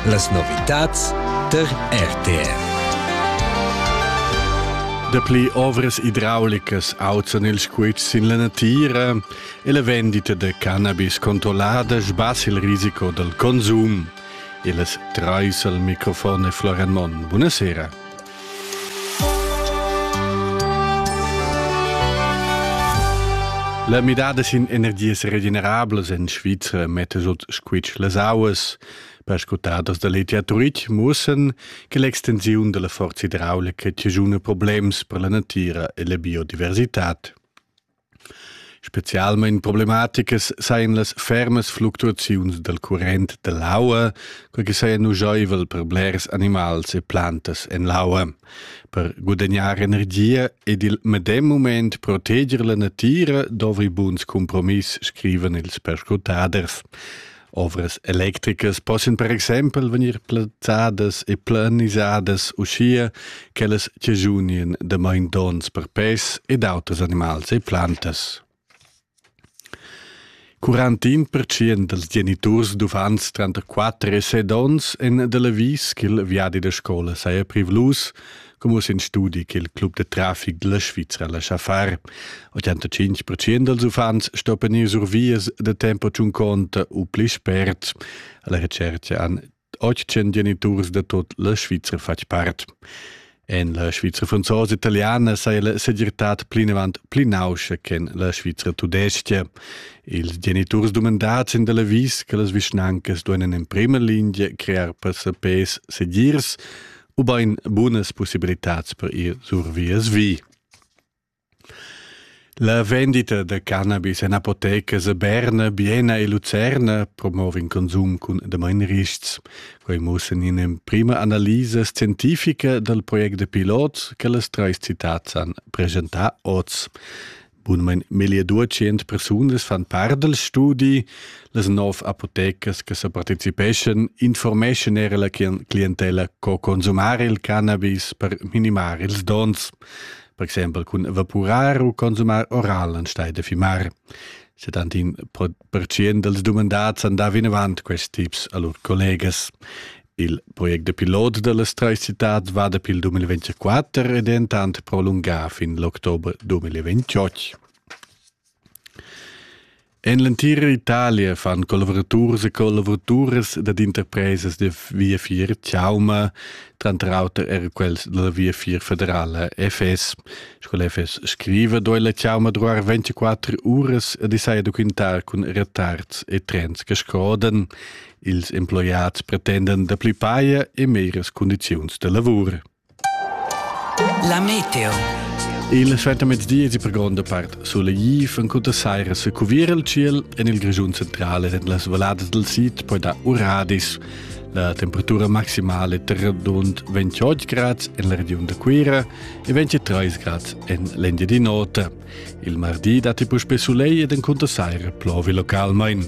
Las novitads tar RTR. Dapli ovras idraulicas auzan ils quets sin la natira e la vendita da cannabis controllada sbassa il risico dal consum. E las trais al microfon è Florian Monn. Buonasera. La midada sin energias regenerablas en Svizra metta sut squitsch las auas. Perscrutadas da l'etiaturit mussan che l'extensiun della forza idraulica tigiuna problems per la natira e la biodiversitad. Specialmein problematicas sajan las fermas fluctuaziuns dal current dall'aua, quei che saja nugeivel per blers animals e plantas en l'aua. Per guadagnar energia ed il medem mument proteger la natira dovri buns compromiss, scrivan ils perscrutaders. Ovras electricas possan per exempel vegnir plazzadas e planisadas uschia ch'ellas chaschunien damain donns per pes ed auters animals e plantas. 41% dals geniturs d'uffants tranter 4 e 7 onns èn dal avis ch'il viadi da scola saja privlus, Come in studi che il club de traffic della Svizzera lascia far. 85% dels uffants stoppen ir sur vias de tempo ciun conte u pli spert. Alla recerca an 800 geniturs de tot la Svizzera fac part. En la Svizzera franzosa-italiana sai la segirtad plinavant pli nauscia che la Svizzera tudesca. Ils geniturs domandats in della vis che las vischnancas duenan in prima linea crear passapes segirs ubain bunas pussibilitads per ir sur vias vi. La vendita da cannabis en apotecas a Berna, Biena e Lucerna promova in consum cun damain rists. Quai mussa in'emprima analisa scientifica dal project da pilot che las trais citads han presentà oz. Bunmain meglier 200 persunas fan part dal studi. Las nov apotecas che sa participeschan informeschan era la clientella co consumar il cannabis per minimar ils dons, per exempel cun evapurar u consumar oral anstelle da fimar. 71% dals dumandads han dà vinavant questi tips a lur collegas. Il project da pilot da las trais citads va dapi il 2024 e dentant prolungà fin l'october 2028. En l'entira Italia fan collavuraturs e collavoraturas dad interpresas da Via 4 Chauma, tranter auter er quels della Via 4 federala FS. Scola FS scriva doi la Chauma druar 24 uras e disai documentar cun retards e trens che scoden. Ils emploiads pretenden da pli paia e meras cundiziuns da lavur. La meteo. Il suentermezdi è per gronda part solegliv en cunta saira se cuvir il ciel en il Grigiun centrale en las valadas del sid poi da Uradis. La temperatura maximale tra rund 28 grad en la region da Cuira e 23 grad en l'Endia di nota. Il mardi datti puspè soleil ed en cunta saira plovi localmain.